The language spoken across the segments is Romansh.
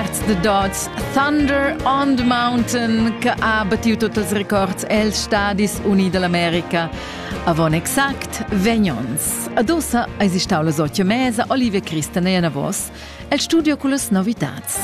Perts de Dots, Thunder on the Mountain, che ha battiu tot els records els Stadis Unii dell'America. Avon exact 20 ons. Adossa eis stau la sotja mesa Olivia Christen e Anavos el studio con las novitats.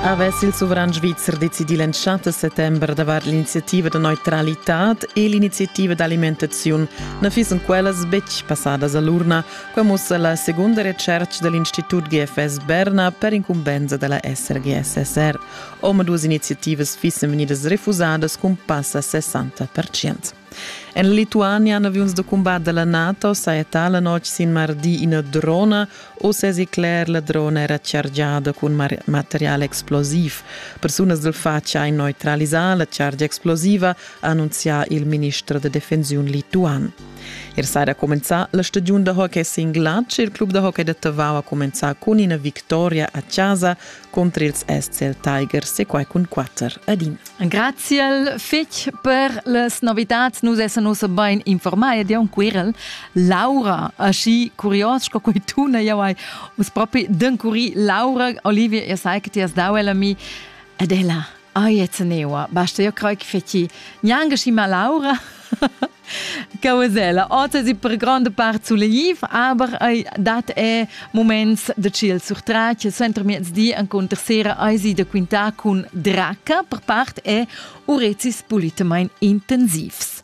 Avess il sovran svizzer decidì l'entschatta settembre davart l'iniziativa de neutralità e l'iniziativa d'alimentaziun na fissen quellas betg passadas a l'urna. Quai mussa la segunda recerca da l'Institut GFS Berna per incumbensa della SRGSSR. Omaduas iniziativas fissen vegnidas refusadas cun passa 60%. En Lituania, en avions de combat della NATO, saja tala notg sin mardi ina drona Uss èsi cler, la drona era chargiada cun material explosiv. Persunas dal fatg han neutralisà la chargia explosiva, ha annunzià il minister da defensiun lituan. Er saja cumenzà la stagiun da hockey sin glatsch. Il club da hockey da Tavau ha cumenzà cun ina victoria a chasa contr ils SCL Tigers e quai cun quatter adina. Graziel fetg per las novidats. Nus essan ussa bein informai ed jau Quirel. Laura, aschi curios sco quei tuna jau hai uns propi d'encuri Laura Olivia, ihr sei che ti hast dau ella mi ed ella Ai, jetzt neua, basta, io crei che feci neanche si ma Laura. Cavasella. Otas e per grande part sulegniv, aber dat è moments de chill surtrat, center miezdi encontr sera aisi da quintar cun Draca, per part è urecis pulitamain intensivs.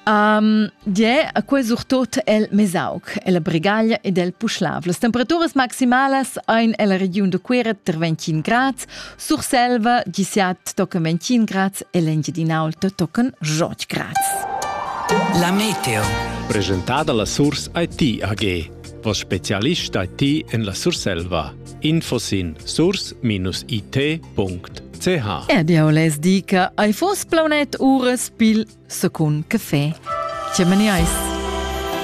Um, die, a quei surtot el Mesaug, el Bregaglia ed el Puschlav. Las temperaturas maximalas ein ella regiun de Cuera ter 25 grads, Surselva 17 tochen 21 grads e l'Engiadinaulta tochen 8 grads. La meteo. Presentada la Surs IT AG, vos specialist IT en la Surselva. info sin source-it.ch RDO les dica ai fos planet uras pil secund café. Ce meniais?